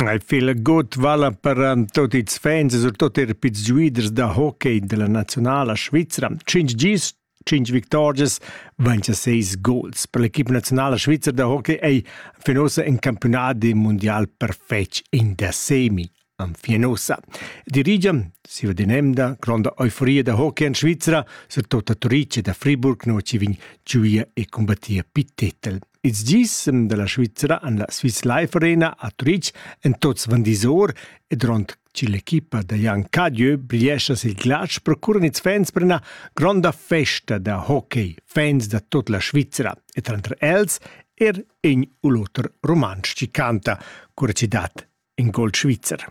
Ei fila god vala per tut ils fans e surtut er pils giuiders da hockey della nazionala svizra. Cinc gis, cinc victorias, 26 gols. Per l'equipa nazionala svizra da hockey ei fin ussa in campionat de mondial perfetg in da semi. Anfien ussa. Dirigia, siva dinemda, gronda euforia da hockey en Svizra, surtut a Turice da Friburg, no ci vin giuia e combattia pi titel. Ils gisem da la Svizra han la Swiss Life Arena a Turitg en tots van disor e durant che l'equipa da Jan Cadieu briescha sil glatsch procuran ils fans per una gronda festa da hockey, fans da tut la Svizra e tranter els er in u l'oter rumantsch che canta, cura che dat in gol svizzer.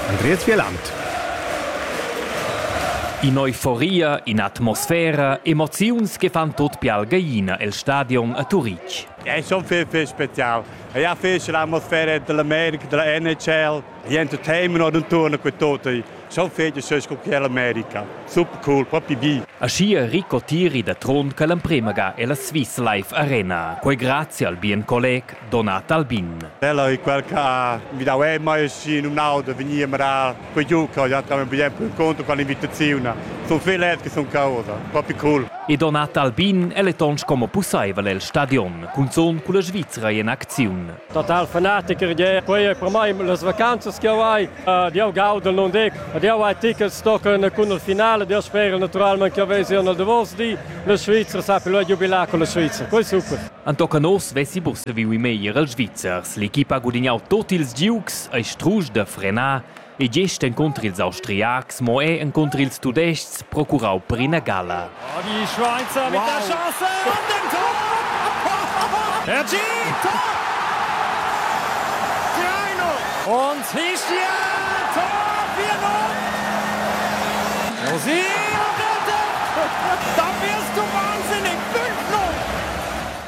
Andreas Wieland. In'euforia, in'atmosfera, emoziuns che fan tut più algaina el stadion a Turitg. È schon viel, viel spezial. Ich habe viel l'atmosfera dell'America, della NHL, gli entertainment und turnen con tutti. Schon viel schön guardare l'America. Super cool, proprio wie. Aschia Rico Tiri da Trond che l'emprema ga ella Swiss Life Arena, quei grazie al bien colleg Donat Albin. Ella ei quel che ha midau ei mai schi numnau da vegnir a marar quei giu che ja tamen bien inconter con l'invitaziun. Sun viel led che sun causa, propi cool. E Donat Albin el è tons como pussaivel el stadion, cunzun culla Svizra in acziun. Total fanaticher gie, quei ei per mei las vacanzas che jau hai. Ed jau gaudel non dic, ed jau hai tickets tochen cun il finale, io spero naturalmente che vesi nel davos di la Svizzera, sa più il giubilà con la Svizzera. Quei super. Entochen oz vesi busaviu in meglier els Svizzers. L'equipa ha gudignau tut ils giugs, ei strusch da frenar e gest encunter ils Austriacs, mo era encunter ils Tudestgs procurau per ina gala. Oh, die Schweizer mit wow. der Chance und dem Tor! Hergé! Tor! Und Hischia! Tor 4-0! Musik! Dafür ist du wahnsinnig!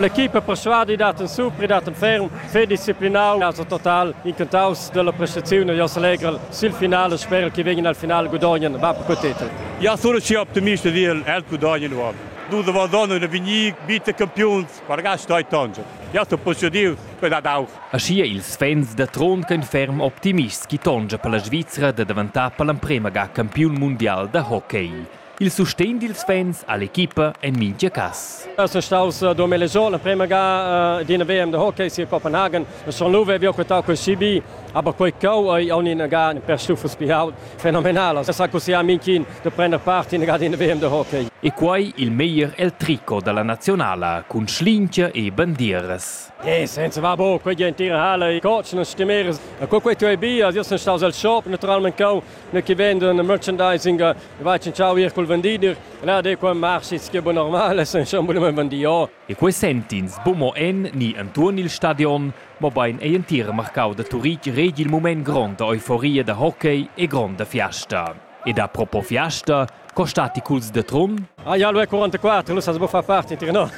L'equipa perschuadi dat en supri, dat en ferm, fer disciplinau, also total incantaus dalla prestaziun e Jos Allegrel sil final e sperel che vegin al final gudognan va per quei titel. Ja sono schi optimista dil el gudognan uob. Dus da Valdona e Vignic bitte campiuns per gasta e tangel. Ja sto possudiu per dad auch. Aschia ils fans da Trond ch'ein ferm optimists chi tongia per la Svizra da daventar per l'emprema ga campiun mundial da hockey. Il sustegn dils fans all'equipa en mintga cass. Eu sun staus duos mille giorn la prima ga d'ina WM de hockey sia Copenhagen. Schon lu vevi quetau quel CB, aber quei cheu ei aunc ina ga per stufas pi aut fenomenala. Es ha cussià Minkin de prender part in ga d'ina WM de hockey. E quei il meglier el tricot dalla nazionala cun schlingia e bandieras. Eh, senza va bo, quei gentira halle, i cocen e stimeres. E co quei tu ei bia, io sun staus al shop naturalment cheu ne che vendono merchandising va cinciao ir col vendider là de qua marchits che normal sen schon bunem vendio e quei sentins bumo en ni entuorn il stadion mobein ei entira marcau da Turitg regi il mument gronda euforia da hockey e gronda fiasta ed a propo fiasta co stati culs de Trun? Ah ja, lu è 44, lu sa bo fa parte, no.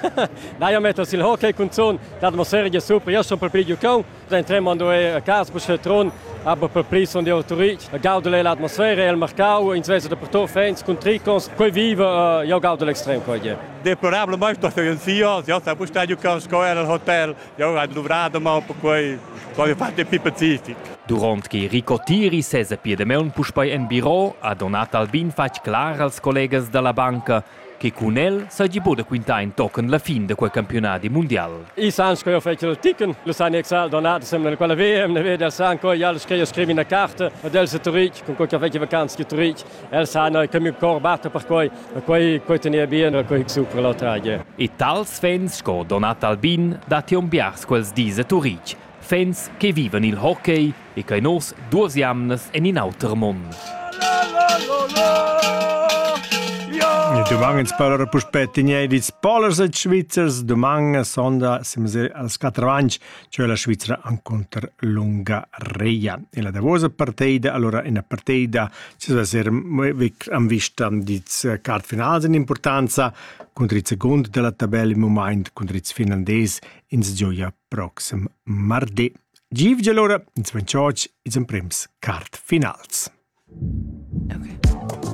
Dai a mettere sil hockey con zon, dat mo serie super, io sono per più giocare Den tremando è a casa per Tron, aber per pli son di autorit. Gaudel è l'atmosfera, il mercau, ins vesa da per to fans con tricons, quei vive, uh, io gaudel extrem coi je. Deplorable mai sto se sia, io sa bustar giù con scola al hotel, io ho dovrado ma un po' quei, voglio fare più pacific. Durant che Rico Tiri sese piedemeunt puspei en biro, ha Donat Albin fatg clar als collegas dalla banca che cun el seigi buca da quintar entochen la fin da quei campiunadi mundial. I san sco jeu fetsch il ticken, lu san Excel donata semna quella VM, ne veder san co jal scriu scrivi una carta ed el se Turitg, con quei che fetsch vacanz che Turitg, el san che mi cor batta per quei, quei quei teneva bien, quei super la tragia. E tals fans sco Donat Albin datti un biars quels dis a Turitg, Fans che vivan il hockey e che nos duas jamnas en in auter mund. Dumang per puspè inedits polers e svizzers dumang sonda semser als quattro anni, cioè la Svizzera contro l'Ungaria. E la davosa partita, allora una partita, ci va essere am vista di card finals in importanza contro il secondo della tabella in moment contro il finlandese Ins gioja proxim mardi. Givgel ora, ins van chotsch, ils emprems quart finals. Okay.